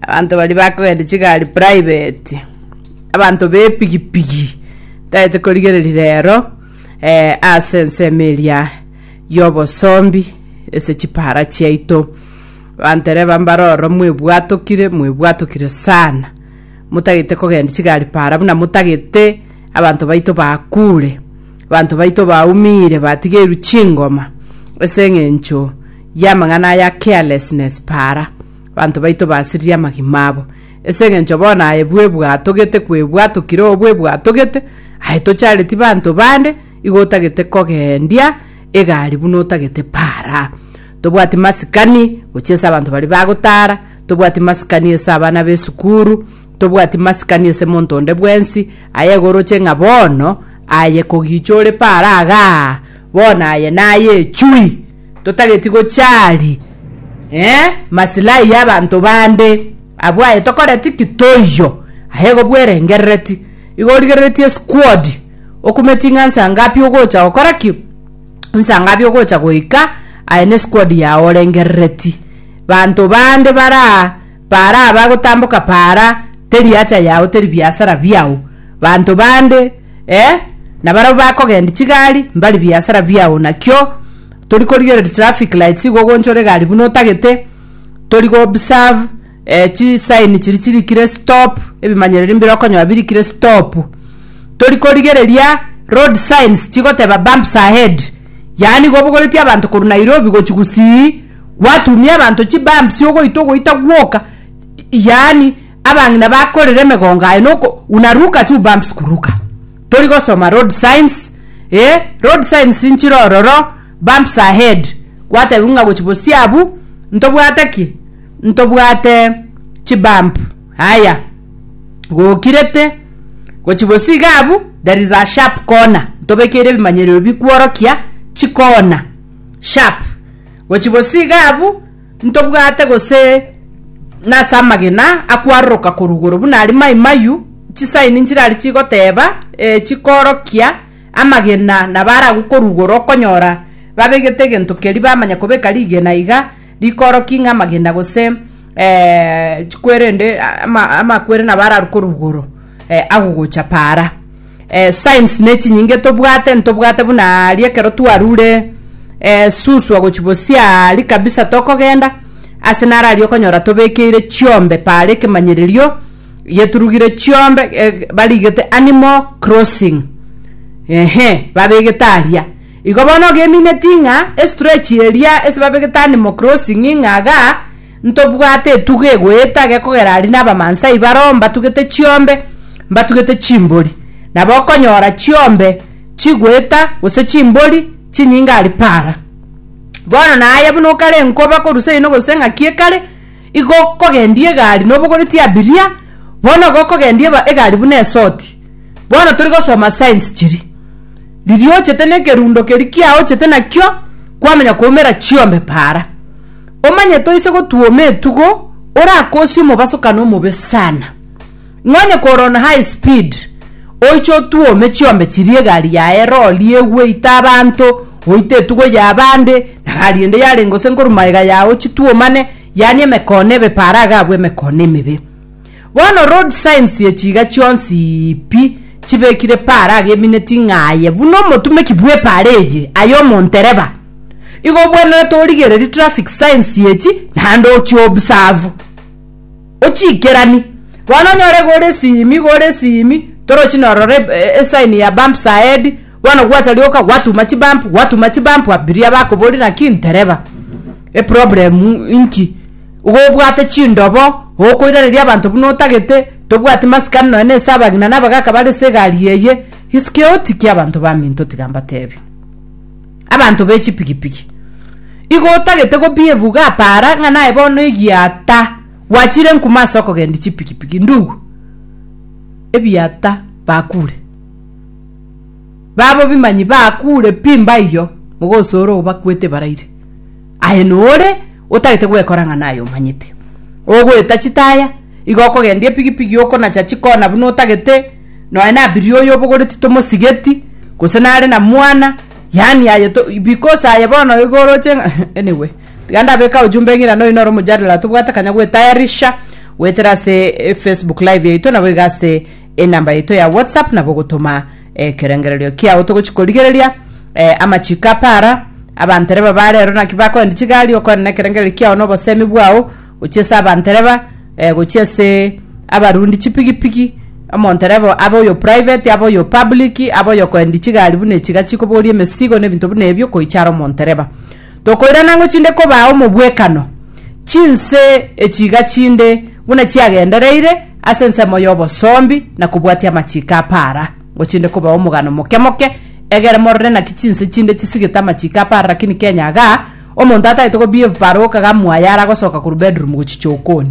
Abanto baria bakogenda chigari private, abanto b'epigipigi taete korigereria rero eh, ase ensemo eria y'obosombi ase chipara chiaito bantereba mbare ororo mwebwatokire mwebwatokire sana motagete kogenda chigari para buna motagete abanto baito bakure abanto baito baumire batigeirwe chingoma ase eng'encho y'amang'ana aya carelessness para Banto baito basiririe amagima abo, ase engencho bono aye bwebwatogete kwebwatukire oo bwebwatogete, aye tochareti banto bande, igo otagete kogendia egari buna otagete para. Tobwati masikani gochia ase abanto baria bagotara, tobwati masikani ase abana b'esukuru, tobwati masikani ase monto onde bwensi, aye igo oroche ng'a bono aye kogicha ore para igaa, bono aye naye chui. totageti gochari eh, masilahi y'abanto bande. Abwo aye tokoreti ki toiyo? Aye igo bwerengerereti. Igo origereretie squad. Okumeti ng'a nsa ngapi ogocha gokora ki? Nsa ngapi ogocha goika? Aye ne squad yao orengerereti. Banto bande bara Paara abagotamboka paara, teri hacha yao, teri biasara biao. Banto bande, eh, na barabwo bakogendia chigari, mbari biasara biao. Nakio tori korigereria traffic lights igo ogonchora egari buna otagete, tori go observe eh, chi sign chiri chirikire stop, ebimanyereri mbire okonyora birikire stop. Tori korigereria road signs chigoteba bumps ahead. Yaani igo obogoretie abanto korwa Nairobi gochia Gusii, Gwatumia abanto chibambi siogoita ogoita gwoka, yaani abang'ina bakorera emegongo aye noko unaruka chubumps kuruka. Tori gosoma road signs, eh, road signs nchire ororo, bumps ahead. Gwatebiwa ng'a gochi bosio abwo ntobwate ki? Ntobwate chibump. Haya, gokirete gochi bosio iga abwo there is a sharp corner. Ntobekeire ebimanyererio bikworokia chikona. sharp gochi bosi iga abwo ntobwate gose nase amagena akwaroroka korwa igoro buna aria Mai Mayu chisaini nchirari chigoteba eh chikorokia amagena nabo are agwo korwa igoro okonyora babegete egento keria bamanya kobeka rigena iga rikorokia ng'a amagena gose chikwere ende ama amakwere nabo ararwo korwa igoro agogocha paara. Eh, signs ne chinyinge tobwate ntobwate buna aria ekero twarure eh, suswa gochi bosia ari kabisa tokogenda ase nare aria okonyora tobekeire chiombe paare ekemanyererio geturugire chiombe eh, barigete animal crossing ehe babegete aria igo bono ogemineti ng'a estretch eria ase babegete animal crossing ng'a iga Ntobwate etugo egoetage kogera aria nabamansai baroo mbatugete chiombe, mbatugete chimbori, nabo okonyora chiombe chigoeta gose chimbori chinyinge aria para. Bono naye buna okare enkoba korwa seino gose engaki ekare, igo okogendia egari nobogoreti abiria, bono igo okogendia eba egari buna esoti. Bono tori gosoma signs chiria. Riria ochete nekerundo keria kiaochete nakio, kwamanya koumera chiombe para. Omanye toise gotwoma etugo orakosie omobasokano omobe sana. Nonye korwa on high speed oiche otwome chiombe chiria egari yaye rori egwe ite abanto oite etugo ya abande na gari ende yarenga gose nkorwa magega yao chitwomane yaani emekono ebe para iga abwo emekono emebe. Bono road signs ye chiiga chionsi pi chibekire paara agemineti ng'a aye buna omotumeki bw'epaara eye aye omontereba. Igo obwenerete origererie traffic signs echi naende ochiobserve. Ochiikerani. Bono onyore iga ore esimi iga ore esimi torochi norora esign ya bumps ahead, Bono gwacha rioka gwatuma chibamp gwatuma chibamp abiria bakobori naki ntereba eproblem inki gobwate chindobo okoirareria abanto buna otagete tobwati masikani noe nese abagina na abagaka bare se egari eye isike otiki abanto baminto tiga mbatebi abanto be chipigipigi igo otagete gobievu ga para ng'a naye bono egiata gwachire nkuma ase okogendi chipigipigi ndugu ebiata bakure Babo bimanyi bakuure pi mbaiyo, mogosoora obakwete baraire. Aye nore otagete gwekora ng'a naye omanyete. Ogoeta chitaya, igo okogendia epigipigi okonacha chikona buna otagete, nonya nabirie oyo obogoreti tomosigeti, gose nare na mwana, yaani aye to because aye bono igo oroche ng'a anyway. Tiga ndabeke ao jumbe ng'irana oyo noro omojadala tobwate akanya goetayarisha, goetera ase eFacebook live yaito nabo iga ase. Enamba yaito ya WhatsApp nabo ogotoma ekerengererio kiao togochi korigereria eh, amachiko apara abantereba bare ero naki bakoenda chigari okoenda nekerengererio kiao na obosemi bwao gochia ase abantereba eh, gochia ase abarundi chipigipigi omonterebo abe oyo private abe oyo public abe oyo koendi chigari buna echiga chikoboria emesigo na ebinto buna ebio koichara omontereba Tokoirana ng'o chinde kobaa omobwekano, chinse echiiga chinde buna chiagendereire ase ensemo y'obosombi na kobwatia amachiiko a paara, ng'o chinde kobaa omogano moke moke, egere morore naki chinse chinde chisigete amachiiko a paara rakini Kenya iga omonto atagete kobehave paara oka ga mwaye ara gosoka korwa bedroom gochicha okoni.